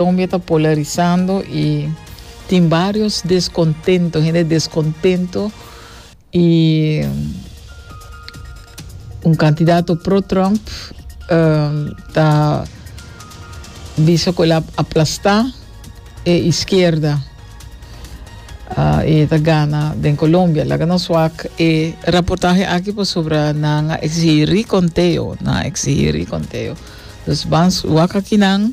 Colombia ta polarizando y tin varios descontento, hende descontento y un cantidad pro Trump um, ta bisa cu el a aplasta e izquierda uh, y ta gana den Colombia. Laga nos wak e reportaje aquí por sobra nan a exigir conteo, nan a exigir conteo. Dus bans wak aquí nan.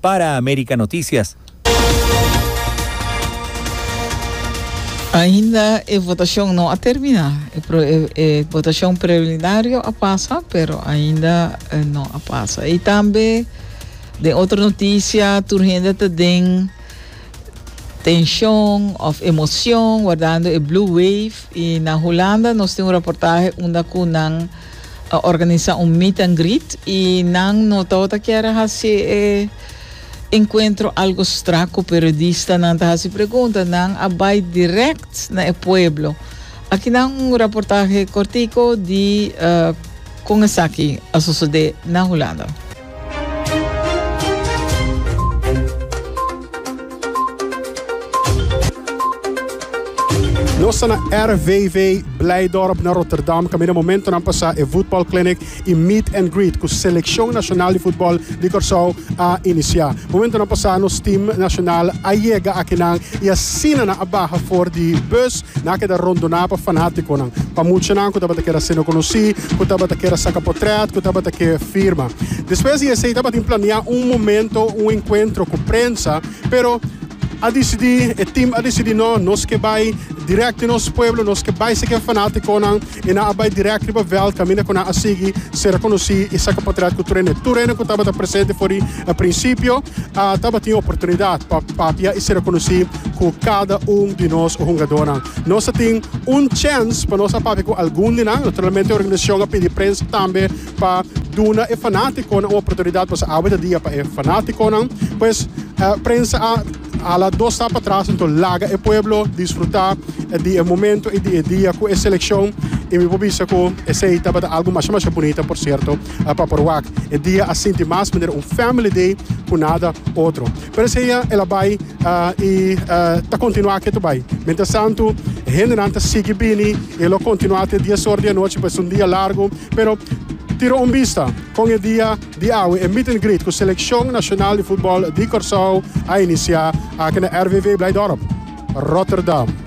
Para America Noticias. Ainda e votacion no a termina. E votacion preliminario a pasa, pero ainda no a pasa. Y tambe den otro noticia, tur hende ta den tension of emocion guardando e blue wave. Y na Hulanda nos tin un reportaje unda cu nan. a organisa un meet and greet y nan no tao ta kier hasi e encuentro algo stra cu periodista nan ta hasi pregunta nan a bay direct na e pueblo aki nan un raportahe cortico di con esaki a sosode na Hulanda. Nos ta na RVV Blijdorp na Rotterdam kaminda momentonan pa sa e voetbal clinic y meet and greet cu seleccion nacional di voetbal di Curaçao a inicia. Momentonan pa sa nos team nacional a yega akinan y asina nan a baha for di bus Nan a keda rondoná pa fanátikonan, pa muchanan ku tabata keda hasenan konosí, ku tabata keda saka potrèt, ku tabata ke firma. Despues di esei tabatin planiá un momento, un enkuentro ku prensa, pero a disidí, e tim a disidí, no, nos ke bai dirèkt den nos pueblo, nos ke bai sekí e fanátikonan. I nan a bai dirèk riba vèlt kaminda ku nan a sigui sera konosí i saka potret ku tur hende. Tur hende ku tabata presente for di prinsipio a tabatin oportunidat pa papia i sera konosí ku kada un di nos hungadónan. Nos a tin un chèns pa nos a papia ku algun di nan. Naturalmente organisacion a pidi prensa tambe pa duna e fanátikonan un oportunidat pasobra awe ta dia pa e fanátikonan. Pues prensa a. A la dos stap atras anto laga e pueblo disfruta di e momento y di e dia cu e seleccion y mi por bisa cu esey tabata algo masha masha bunita por cierto pa por wak. E dia a sinti mas manera un family day cu nada otro. Pero esey a el a bay y ta continua ke ta bay. Mientras tanto e hendenan ta sigui bini y e lo continua te dies ora di anochi pues es un dia largo pero tira un bista con e dia. Di awe e meet and greet cu Seleccion Nacional di Futbol di Corsow a inicia aki na RVV Blijdorp, Rotterdam.